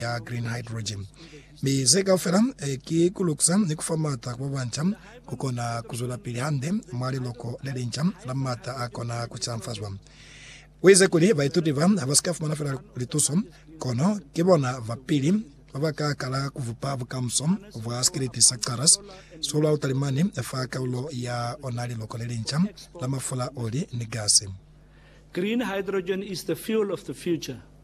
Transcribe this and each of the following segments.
ya green hydrogen. Mi ze kaufela e, ki ku lukisa ni ku fa mata ku ba banca ku kona ku zwelapili hande mwa liloko le linca la mata a kona ku canfazwa. U ize kuli baituti ba ha ba si ka fumana fela lituso, kono ki bona ba pili ba ba ka kala ku bupa bukamuso bwa sikiliti sa Caras solo a Utalimani fa kaulo ya ona liloko le linca la mafula, oli, ni gasi. Green hydrogen is the fuel of the future.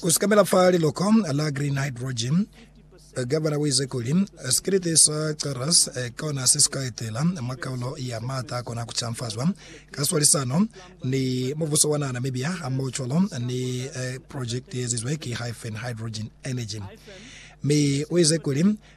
Ku sikamela fa liloko la green hydrogen, Gavana uize kuli, Sikiliti sa Charles kona se sika etela mwa kaulo ya maata akona ku canfazwa ka swalisano ni mubuso wa naha Namibia hamohocwalo ni projekiti yeezizwe ki Hyphen Hydrogen Energy. Mi uize kuli,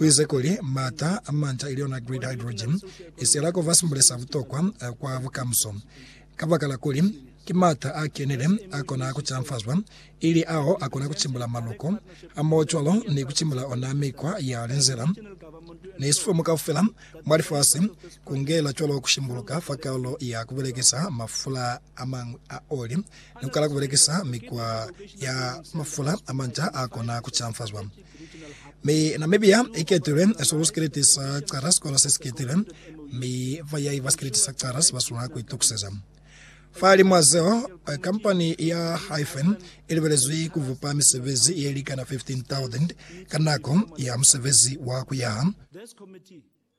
U ize kuli, M'ata a manta, ili yona grid hydrogen, i siyela ku ba simbule sa butokwa kwa bukamuso, kabakala kuli ki m'ata a kenile a kona ku canfazwa, ili ao a kona ku cimbula maloko, hamohocwalo ni ku cimbula ona mikwa ya linzila ni sifumu kaufela mwa lifasi, ku ngela cwalo ku shimbuluka fa kaulo ya ku belekisa mafula a mañwi a oli, ni ku kala ku belekisa mikwa ya mafula a manta a kona ku canfazwa. Mi Namibia iketilwe sulu sikiliti sa cala sikola sesiketilwe, mi bayayi ba sikiliti sa cala sibaswanela kuitukiseza. Fahalimwa zeo, kampani ya Hyphen ilibelezwi kubupa misebezi yelikana 15,000 ka nako ya musebezi wa kuyaha.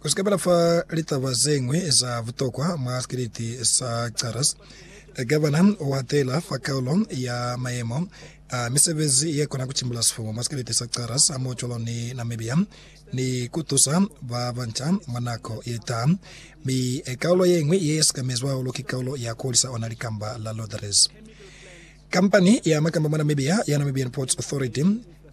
Ku si ka bala fa litaba ze ñwi za butokwa mwa sikripti sa Charles, i ka ba na u hatela fa kaulo ya mayemo a misebezi ye kona ku timbula sifumu mwa sikripti sa Charles hamohocwalo ni Namibia ni ku tusa ba banca mwa nako ye taha. Mi kaulo ye ñwi ye sikamezwi hahulu ki kaulo ya ku hulisa ona likamba la lotteries. Kampani ya makamba mwa Namibia ya Namibian Ports Authority,